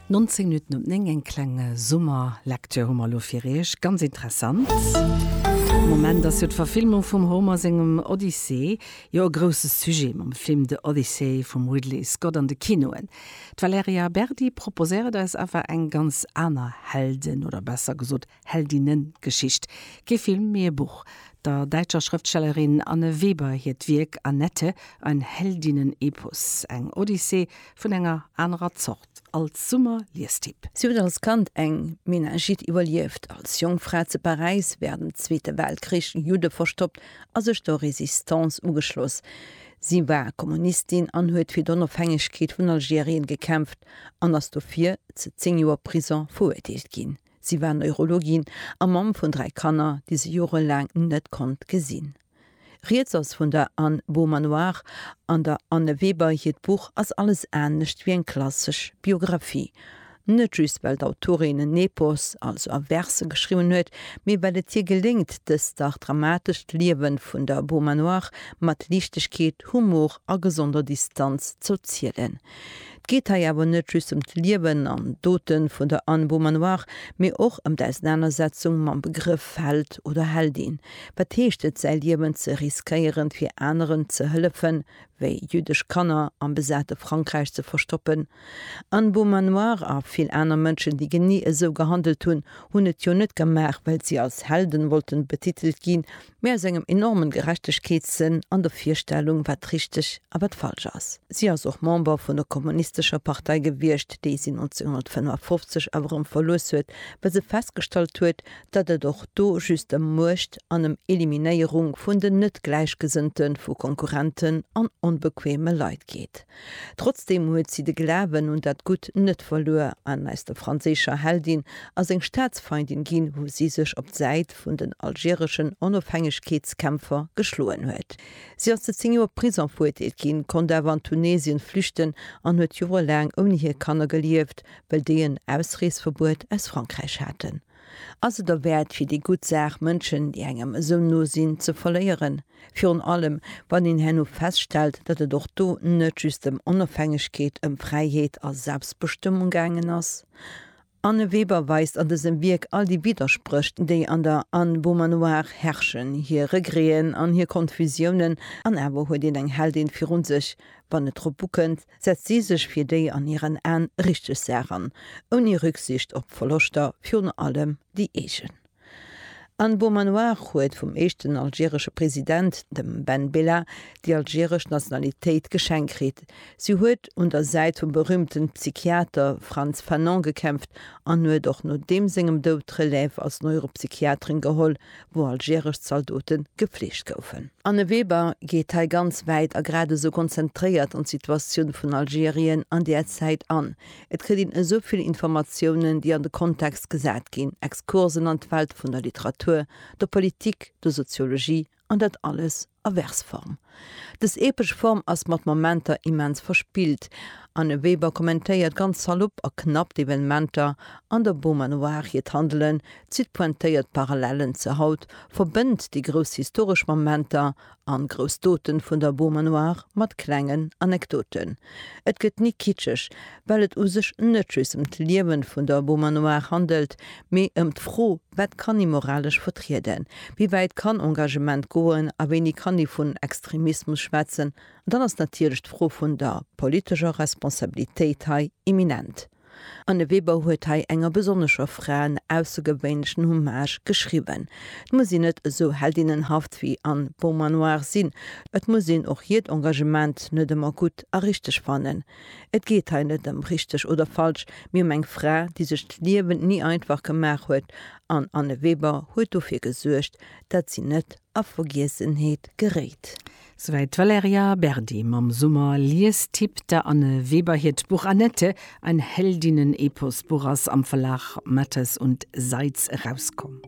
19 Minutten op 9, eng kleng Summer-Lecture hu mer elo fir Iech, ganz interessant. De Moment ass jo d'Verfilmung vum Homer sengem Odyssee jo e grousse Sujet mam Film The Odyssey vum Ridley Scott an de Kinoen. D'Valerija Berdi proposéiert eis awer eng ganz aner Heldin, oder besser gesot Heldinnengeschicht, kee Film, mee e Buch. Der däitscher Schrëftstellerin Anne Weber hiert Wierk Annette, ein Heldinnenepos, eng Odyssee vun enger anerer Zort, als Summer-Liestipp. Si huet als Kand eng Meningite iwwerlieft, als jonk Fra zu Paräis wärend dem Zweete Weltkrich Judde verstoppt a sech der Résistance ugeschloss. Si war Kommunistin an huet fir d'Onofhängegkeet vun Algerien gekämpft an ass dofir zu zéng Joer Prison verurteelt ginn. Si war Neurologin a Mamm vun dräi Kanner, déi se jorelaang net konnt gesinn. Rieds ass vun der Anne Beaumanoir an der Anne Weber. Hiert Buch ass alles anescht wéi eng klassesch Biographie. Net just well d'Autorin en Epos, also a Verse geschriwwen huet, mee well et hir geléngt, dëst dach dramatescht Liewe vun der Beaumanoir mat Liichtegkeet, Humor a gesonder Distanz z'erzielen. 't geet hei awer net just ëm d'Liewen an Dote vun der Anne Beaumanoir, mee och ëm d'Ausenanersetzung mam Begrëff Held oder Heldin. Wat heescht et, säi Liewen ze riskéieren, fir aneren ze hëllefen, wéi jüddesch Kanner am besate Frankräich ze verstoppen? Anne Beaumanoir a vill aner Mënschen, déi genee esou gehandelt hunn, hunn et jo net gemaach, well si als Helden wollten betitelt ginn, mee aus engem enormen Gerechtegkeetssënn an der Virstellung, wat richteg a wat falsch ass. Si ass och Member vun der kommunistescher Partei gewiescht, déi si 1955 awer erëm verluess huet, well se festgestallt huet, datt et och do just ëm Muecht an ëm Eliminéierung vun den Net-Gläichgesënnte vu Konkurrenten an onbequeme Leit geet. Trotzdeem huet si de Glawen un dat Gutt net verluer an aus der franséischer Heldin ass eng Staatsfeindin ginn, wou si sech op d'Säit Haut vun den algereschen Onofhängegkeetskämpfer geschloen huet. Si ass zu 10 Joer Prison veruerteelt ginn, konnt awer an Tunesien flüchten an huet jorelaang ouni hir Kanner gelieft, well déi en Ausreesverbuet aus Frankräich haten. Ass et derwäert fir déi gutt Saach Mënschen, déi engem esou no sinn, ze verléieren? Virun allem wann een herno feststellt, datt et och do net just ëm Onofhängegkeet, ëm Fräiheet a Selbstbestëmmung gaangen ass. D'Anne Weber weist an dësem Wierk all déi Widderspréch, déi an der Anne Beaumanoir herrschen, hir Regréen an hir Konfusiounen, an awer huet een eng Heldin virun sech. Wann et drop ukënnt, setzt si sech fir déi an hiren Aen richteg Saach an, ouni Rücksicht op Verloschter, virun allem déi eegen. An Beaumanoir huet vum éischten algeresche President, dem Ben Bella, déi algeresch Nationalitéit geschenkt kritt. Si huet un der Säit vum berüümten Psychiater Frantz Fanon gekämpft an huet och no deem sengem Doud d'Relève als Neuropsychiaterin geholl, wou algeresch Zaldote gefleegt goufen. Anne Weber geet hei ganz wäit a gradesou konzentréiert an d'Situatioun vun Algerien an där Zäit an. Et kritt een esou vill Informatiounen, déi an de Kontext gesat ginn, Exkursen an d'Welt vun der Literatur, der Politik, der Soziologie, an dat alles a Versform. Dës epesch Form ass mat Momenter immens verspillt. Anne Weber kommentéiert ganz salopp a knapp d'Evenementer an der Beaumanoir, hiert Handelen zitt pointéiert Parallellen zur Haut, verbënnt déi grouss historesch Momenter An grouss Doten vun der Beaumanoire mat klengen Anekdoten. Et gëtt ni kitscheg, well et u sech net just ëm d'Liewen vun der Beaumanoire handelt, mee ëm d'Fro, wat kann ee moralesch vertrieden, wéi wäit kann Engagement goen a wéini kann ee vun Extremismus schwätzen. An dann ass natierlech d'Fro vun der politescher Responsabilitéit hei imminent. Anne Weber huet hei enger besonnescher Fra en aussergewéinlechen Hommage geschriwwen. Et muss een net esou heldinnenhaft wéi Anne Beaumanoir sinn, et muss een och hiert Engagement net ëmmer gutt a richteg fannen. Et geet hei net ëm richteg oder falsch, mee ëm eng Fra, déi sech d'Liewen ni einfach gemaach huet, an Anne Weber huet dofir gesuergt, dat si net a Vergiessenheet geréit. Souwäit d'Valerija Berdi mam Summer-Liestipp, der Anne Weber hiert Buch Annette, ein Heldinnen-Epos Buch ass am Verlag Matthes und Seitz erauskomm.